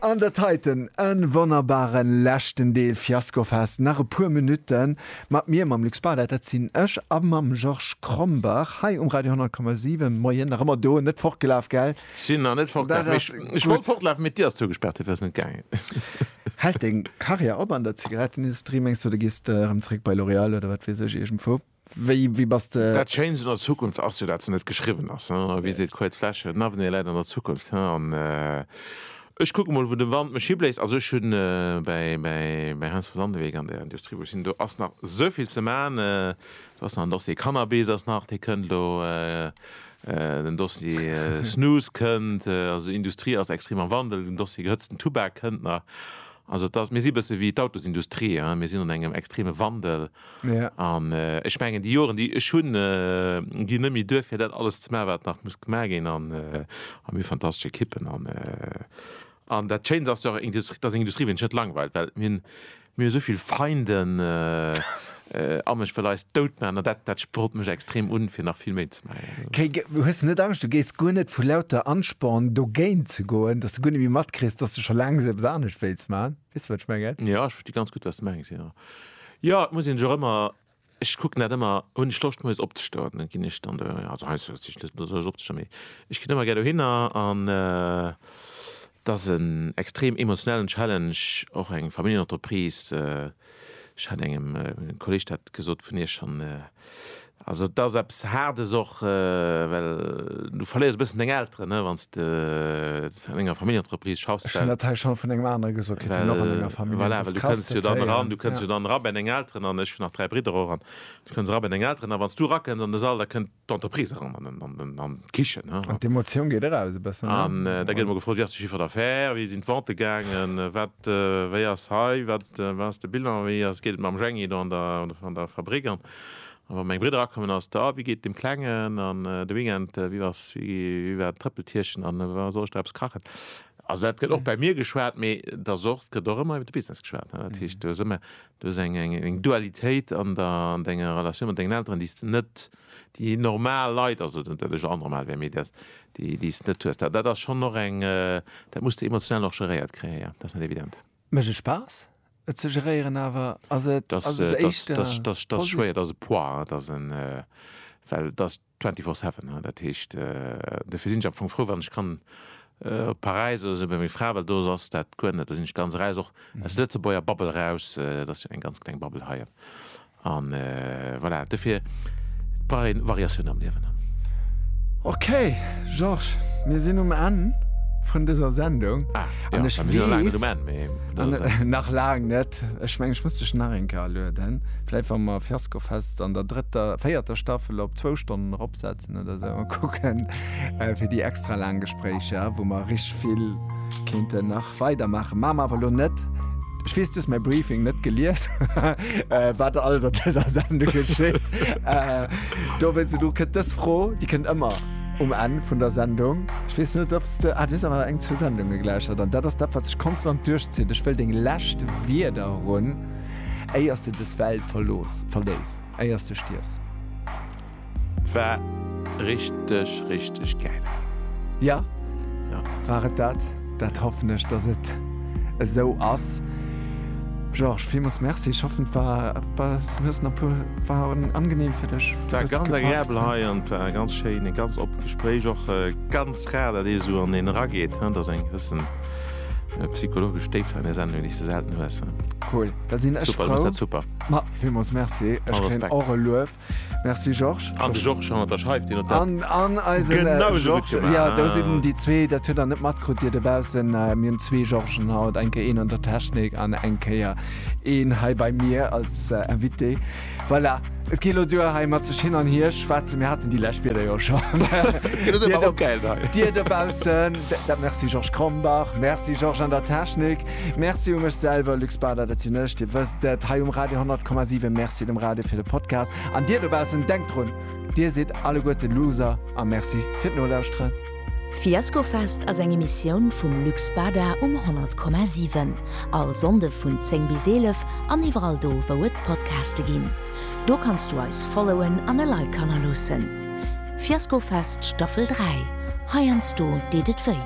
An dat heiten e wonnerbare leschten Deel Fiaskofest. Nach e puer Minutte mat mir, mam Luc Spar, dat sinn ech, a mam Georges Krombach hei um Radio 10,7. Moien, nach ëmmer do, net fortgelaf, gell? Sinn nach net fortgelaf, mee ech wollt fortlafen, mee d'Dier ass zougespaart, duerfir ass et net gaangen. Hält deng Karriär op an der Zigarettenindustrie, mengs de? Oder gees de erëm zeréck bei L'Oréal oder wat weess ech, iergendwou? Wéi bass de? Dat Schéinst un der Zukunft ass jo, dat se net geschriwwen ass. Wéi seet d'Couët Flesch, N'avenir läit an der Zukunft. An ech kucke mol, wou de Wand mech hibléist. Also ech hunn bei Heinz von Landewyck an der Industrie, wou ech sinn, do ass nach esou vill ze maachen. Do ass nach en Dossier Cannabis ass nach, dee kënnt elo, den Dossier Snus kënnt. Also d'Industrie ass extrem am Wandel. Den Dossier gehëtzten Tubak kënnt nach. Also et ass, mir si e bësse wéi d'Autosindustrie, mir sinn an engem extreme Wandel. An ech mengen, déi Joren, déi ech hunn, ginn net méi duer, fir dat alles ze maachen, wat nach muss gemaach ginn. An mir hu fantastesch Ekippen. An dat Schéint ass jo och, dat ass eng Industrie, wou een sech net langweilt, well mir hunn esou vill Feinden an ech wëll eis dout maachen. An dat sprot mech extrem un, fir nach vill méi ze maachen. Hues de net Angscht, du géiss guer net vu lauter Ansporn dogéint ze goen, dass du guer net méi matkriss, dass du scho laang eppes anescht wéilts maachen? Weess de wat ech mengen? Jo, ech versti ganz gutt wat s de mengs, jo. Jo, et muss een sech och ëmmer, ech kucken dat ëmmer, hunn ech Loscht moies opzestoen, da ginn ech dann do, also heiansdo hues de just net Loscht opzestoen, mee ech ginn ëmmer gär dohinner an et ass en extrem emotionellen Challenge, och eng Familljenentreprise. Ech hat engem Kolleeg dat gesot, vun Iech an Also et ass eppes Haardes och, well du verléiers e bëssen deng Elteren, ne, wann s de an enger Familljenentreprise schaffs. Ech hunn dat hei schonn vun engem anere gesot kritt, deen och an enger Familljen ass. Voilà, well du kënns jo dann eran, du kënns jo dann era bei deng Elteren an ech hunn nach dräi Bridder och an du kënns era bei deng Elteren a wann s du erakënns an de Sall, da kënnt d'Entreprise eran an d'Kichen. An d'Emotioun geet eraus e bëssen. An da gëtt ëmmer gefrot, Wéi ass de Chiffre d'affaires? Wéi sinn d'Vente gaangen? Wat, wéi ass hei? Wat? Wat ass de Bilan? Wéi ass, geet et mam Jhänggi do an der, an der Fabrik? An wa meng Bridder akommen, ass da, wéi geet dem Klengen? An de Weekend, wéi ass, wéi, wéi war d'Trëppeltierchen? An wa soll ech da eppes kachen? Also dat gëtt och bei mir geschwat, mee et ass och, et gëtt och ëmmer iwwer de Business geschwat, ne. Dat heescht, do ass ëmmer, do ass eng, eng, eng Dualitéit an der, an denger Relatioun mat dengen Elteren, déi s de net, déi normal Leit, also net dat ech anormal wär, mee dat, déi, déi s de net hues. Dat, dat ass schonn och eng, dat muss de emotional och geréiert kréien, jo, dat ass net evident. Mécht et Spaass, et ze geréieren, awer ass et Dat ass et éischter dat ass dat ass schwéier, dat ass e Poids, hein, dat ass en well dat ass twenty four seven, hein, dat heescht dofir sinn ech am Fong frou wann ech kann op Paräis oder esou bei menger Fra, well do ass dat guer net, do sinn ech ganz eraus och aus der Lëtzebuerger Bubble eraus, dat ass jo eng ganz kleng Bubble hei. An voilà, dofir brauch een Variatioun am Liewen. Ok Georges, mir sinn um Enn vun dëser Sendung. Ah jo, mir sinn nach laang net um Enn, mee vun dëser Sendung. Nach laang net. Ech mengen, ech muss dech nach eng Kéier alueden, vläicht wa mer Fiaskofest an der drëtter, véierter Staffel op zwou Stonnen eropsetzen oder esou a kucken, fir déi extra laang Gespréicher, wou mer richteg vill kéinten nach. Weider maache maache mer awer elo net. Ech weess, du hues mäi Briefing net gelies, wat alles an dëser Sendung geschitt. Dowéinst, elo kënnt dës Fro, déi kënnt ëmmer um Enn vun der Sendung. Ech weess net, ob s de, ah, du hues awer eng, zwou Sendunge gelauschtert an dat ass dat, wat sech konstant duerchzitt. Ech wëll deng lescht Wierder erun, éier s de dës Welt verlooss, verléiss, éier s de stierfs. War richteg richteg gäil. Ja, war et dat? Dat hoffen ech, dass et esou ass. Georges, villmools Merci. Ech hoffen, et war, du hues nach puer, war angenehm fir dech? War ganz agreabel hei an et war e ganz schéin, e ganz oppent Gespréich. Och ganz rar, dat ee sou an een erageet, hein, dass eng gewëssen psychologesch Déift an där Sendung, déi s de selten hues, hein. Cool, da sinn ech frou. Super, du hues dat super. Ma, villmools Merci. Ech kréien och e Luef. Merci Georges. An de Georges hannert der Scheif, deen huet dat genausou gutt gemaach. Jo, do sinn déi zwee, dat hutt der net matkrut, Dir dobaussen. Mir hunn zwee Georges'en haut, eng Kéier een an der Technik an eng Kéier een hei bei mir als Invité. Voilà, et geet elo duer hei mat sech hin an hier schwätzen. Mir haten déi lescht Wieder jo scho. Dir dobaussen, dat Merci Georges Krombach. Merci Georges an der Technik. Merci u mech selwer, Luc Spada, dat sinn ech, Dir wësst et, hei um Radio 10,7. Merci dem Radio fir de Podcast. An Dir dobaussen, denkt drun, Dir sidd alleguerten Loser a Merci fir d'Nolauschteren. Fiaskofest ass eng Emissioun vum Luc Spada um 100,7. All Sonnde vun 10 bis 11 an iwwerall do, wou et Podcaste ginn. Do kanns du eis followen an e Like hannerloossen. Fiaskofest Staffel 3, heiansdo deet et wéi.